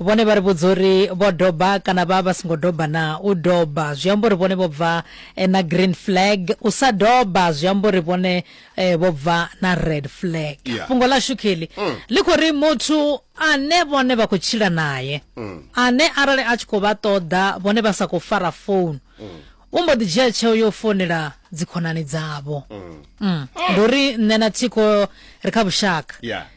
Vhone vha ri vhudza uri vho doba kana vha vha songo doba na u doba zwi amba uri vhone vho bva eh, na green flag u sa doba zwi amba uri vhone eh, vho bva na red flag yeah. fhungo ḽa shukeli mm. ḽi khou ri muthu ane vhone vha khou tshila naye mm. ane arali a tshi khou vha ṱoḓa vhone vha sa khou fara founu mm. u mbo ḓi dzhia tsheo yo founela dzikhonani dzavho mm. mm. ndi uri nṋe na thikho ri kha vhushaka yeah.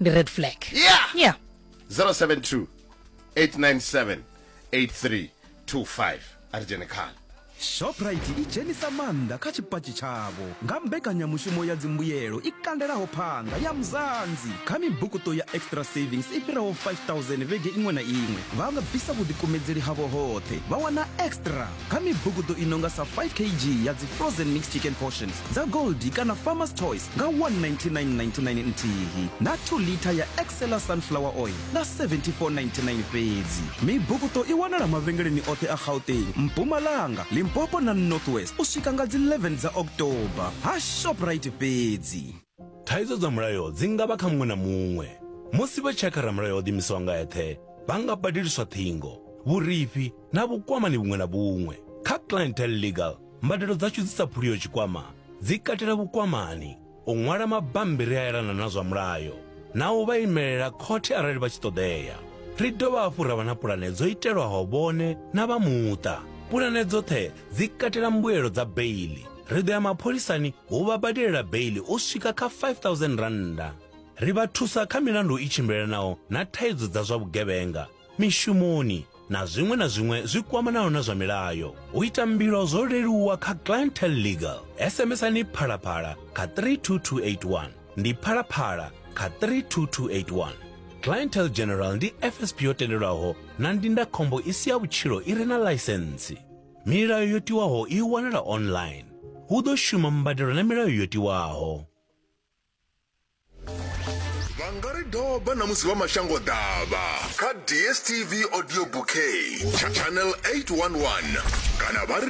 ndi red flag yeah yeah 072 897 8325 ari dzhene khala shoprite i dzhenisa maanḓa kha tshipatshi tshavho nga mbekanyamushumo ya dzimbuyelo i kandelaho phanda ya muzanzi kha mibukuṱo ya extra savings i fhiraho 5000 vhege iṅwe na iṅwe vha nga bvisa vhuḓikumedzeli havho hoṱhe vha wana extra kha mibugudo i no nga sa 5 kg ya dzi frozen mixed chicken portions dza goldi kana farmers choice nga 19999 nthihi na 2 litha ya excela sunflower oil nga 7499 fhedzi mibugudo i wanala mavhengeleni oṱhe a gauteng mpumalanga limpopo na northwest u swika nga dzi 11 dza october ha shoprite fhedzi Thaidzo dza mulayo dzi nga vha kha muṅwe na muṅwe. Musi vha tshi ya kha ramulayo o ḓimisaho nga eṱhe, vha nga badeliswa ṱhingo, vhurifhi na vhukwamani vhuṅwe na vhuṅwe. Kha Clientele Legal, mbadelo dzashu dzi sa phuliho tshikwama dzi katela vhukwamani, u ṅwala mabammbiri a elana na zwa mulayo na u vha imelela khothe arali vha tshi ṱoḓea. Ri dovha hafhu ra vha na pulane dzo itelwaho vhone na vha muṱa. Pulane dzoṱhe dzi katela mbuelo dza beili ri ḓo ya mapholisani hu vha badelela beili u swika kha 5000 rannda ri vha thusa kha milandu i tshimbilelanaho na thaidzo dza zwa vhugevhenga mishumoni na zwiṅwe na zwiṅwe zwi kwamanaho na zwa milayo u ita mbilo zwo leluwa kha clientel legal sms-ani phalaphala kha 32281 ndi phalaphala kha 32281 clientel general ndi fsp yo tendelwaho na ndindakhombo i si ya vhutshilo i re na ḽaisentsi Milayo yo tiwaho i wanala online. Hu ḓo shuma mbadelo na milayo yo tiwaho. vha nga ri doba na musi vha mashango ḓavha kha dstv audio bouquet channel 811 kana vha ri